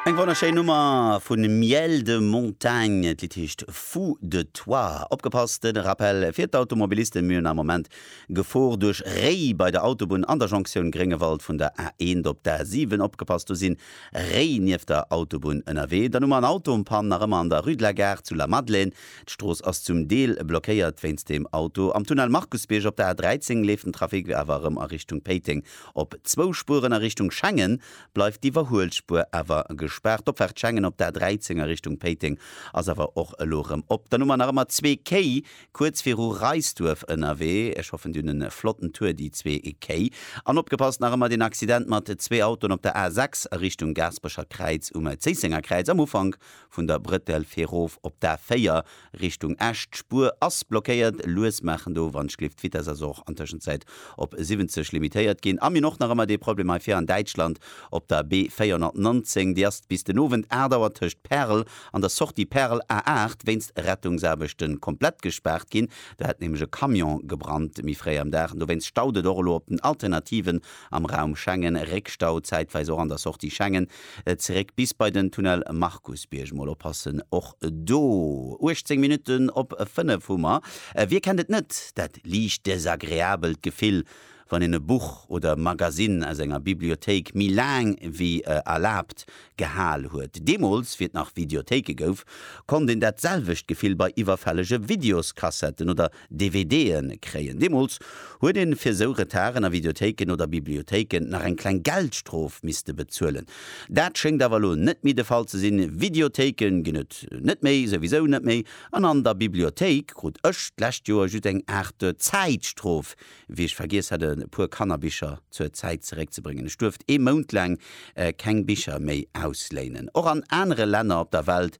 Eng wonnerschéin Nummer vu Miel de Montagne, d'Lidd heescht Fou de toi. Opgepasst, en Rappel fir d'Automobilisten, mir hunn am Moment Gefor duerch Réi bei der Autobunn an der Jonktioun Gréngewald vun der A1 op d'A7. Opgepasst, do sinn Réi nieft der Autobunn ënnerwee. Dann hu mer en Auto en panne nach ëmmer an der Rue de la Gare zu Lamadelaine. D'Strooss ass zum Deel blockéiert wéinst deem Auto. Am Tunnel Markusbierg op der A13 leeft den Trafic awer erëm a Richtung Péiteng Op zwou Spueren a Richtung Schengen bleift d'Iwwerhuelspuer awer gespaart. D'Opfaart Schengen op d'A13 a Richtung Péiteng ass awer och elo erëm op. Dann hu mer nach ëmmer zwee Quai kuerz viru Reisduerf ënnerwee. Ech hoffen, dir hunn e flotten Tour, déi zwee Quai. An opgepasst, nach ëmmer deen Accident mat zwee Autoen op der A6 a Richtung Gaasperecher Kräiz um Zéissenger Kräiz am Ufank vun der Brëttel fir erof op d'A4. Richtung Esch, d'Spuer ass blockéiert. Lues maachen do, wann d'Schliff. D'Vitess ass och an Tëschenzäit op 70 limitéiert ginn. Am hunn och nach ëmmer dee Problem hei vir an Däitschland op der B 419. Déi ass bis den Owend 8 Auer tëscht Pärel an der Sortie Pärel A8 wéinst Rettungsaarbechten komplett gespaart ginn. Do hätt nämlech e Camion gebrannt méi fréi am Dag an dowéinst staut et och elo op den Alternativen am Raum Schengen, Réckstau zäitweis och an der Sortie Schengen, zeréck bis bei den Tunnel Markusbierg. Mol oppassen och do. 18 Minutten op 5 hu mer. Wie kennt et net, dat liicht desagreabelt Gefill, wann een e Buch oder e Magasinn aus enger Bibliothéik méi laang wéi erlaabt gehal huet? Deemools, wéi et nach Videothéike gouf, konnt een dat selwecht Gefill bei iwwerfällege Videoskassetten oder DVD'en kréien. Deemools huet een fir sou Retarden a Videothéiken oder Bibliothéiken nach eng kleng Geldstrof misste bezuelen. Dat schéngt awer elo net méi de Fall ze sinn. Videothéiken ginn et net méi, souwisou net méi, an an der Bibliothéik krut ech d'lescht Joer just eng Aart Zäitstrof, wéi ech vergiess hat e puer Kannerbicher zur Zäit zeréckzebréngen. Ech duerft ee Mount laang keng Bicher méi ausléinen. Och an anere Länner op der Welt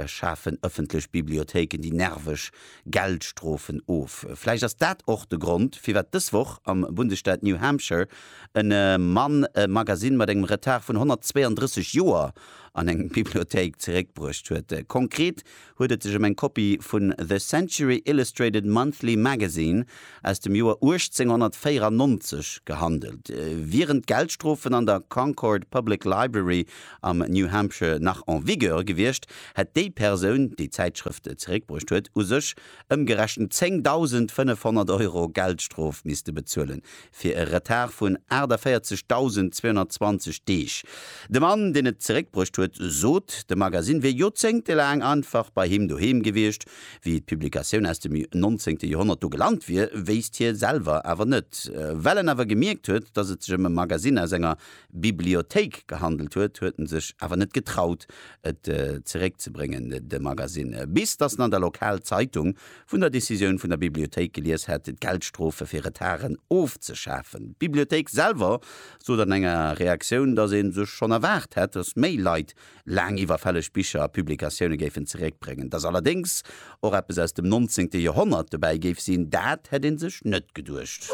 schafen ëffentlech Bibliothéiken déi nerveg Geldstrofen of. Vläicht ass dat och de Grond, firwat dës Woch am Bundesstaat New Hampshire e Mann e Magasinn mat engem Retard vun 132 Joer an eng Bibliothéik zeréckbruecht huet. Konkret huet et sech ëm eng Kopie vun The Century Illustrated Monthly Magazine aus dem Joer 1894 gehandelt. Wieren d'Geldstrofen an der Concord Public Library am New Hampshire nach en vigueur gewiescht, hätt déi Persoun, déi d'Zäitschrëft zeréckbruecht huet, u sech ëmgerechent 10.500 Euro Geldstrof misste bezuelen, fir e Retard vun 48.220 Deeg. De Mann, deen et zeréckbruecht huet, sot, de Magasinn wier joerzéngtelaang einfach bei him doheem gewiescht. Wéi d'Publikatioun aus dem 19. Joerhonnert do gelant wier, wéisst hie selwer awer net, well en awer gemierkt huet, datt et sech ëm e Magasinn aus enger Bibliothéik gehandelt huet, huet en sech awer net getraut, et zeréckzebréngen, de Magasinn, bis datt en an der Lokalzeitung vun der Decisioun vun der Bibliothéik gelies hätt, d'Geldstrofe fir Retarden ofzeschafen. D'Bibliothéik selwer sot an enger Reaktioun, datt ee sech schonn erwaart hätt, datt méi Leit laang iwwerfälleg Bicher a Publikatioune géifen zeréckbréngen. Datt allerdéngs och eppes aus dem 19. Joerhonnert dobäi géif sinn, dat hätt ee sech net geduecht.